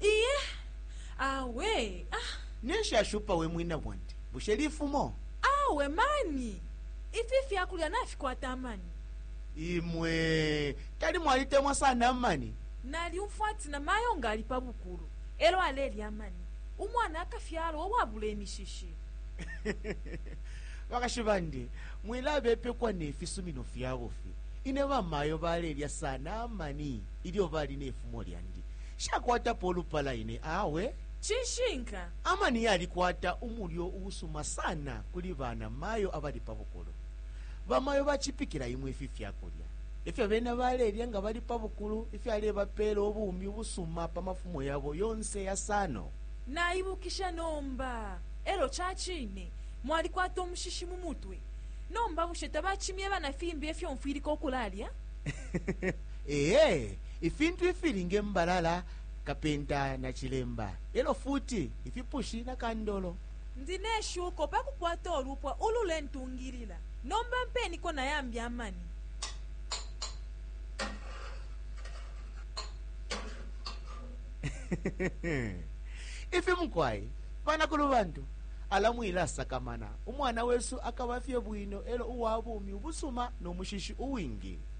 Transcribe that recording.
iye awe ah, ninshi ashupa we mwina bwandi bushe lifumo awe mani ifi fyakulya nafikwata amani imwe tali mwalitemwa sana amani nalyumfwa ati na mayo nga ali pa bukulu elo alelya amani umwana akafyalwa uwabula imishishi bakashi bandi mwilabepekwa ne fisumino fyabufi ine bamayo balelya sana amani ilyo bali ne fumo lyandi. Nshakwatapo ulupala ine awe. Cishinka. Amani yalikwata umulyo uusuma sana kuli bana mayo abali pa bukulu. Bamayo bacipikila imwe ifi fyakulya. Efyo bena balelya nga bali pa bukulu ifyalebapela ubumi ubusuma pa mafumo yabo yonse yasano. Naibukisha nomba. Elo cacine, mwalikwata umushishi mu mutwe. Nomba bushe tabacimyeba na fimbi efyo mfwilika ukulalya? Ee, ifintu ifili nge mbalala, kapenta na cilemba, elo futi ifipushi na kandolo. Ndi ne shuko pa kukwata ulupwa ululentungilila. Nomba mpeniko na yambi amani. Ifi mukwai, banakulu bantu, ala mwilasakamana. Umwana wesu akaba fye bwino elo uwa bumi ubusuma no mushishi uwingi.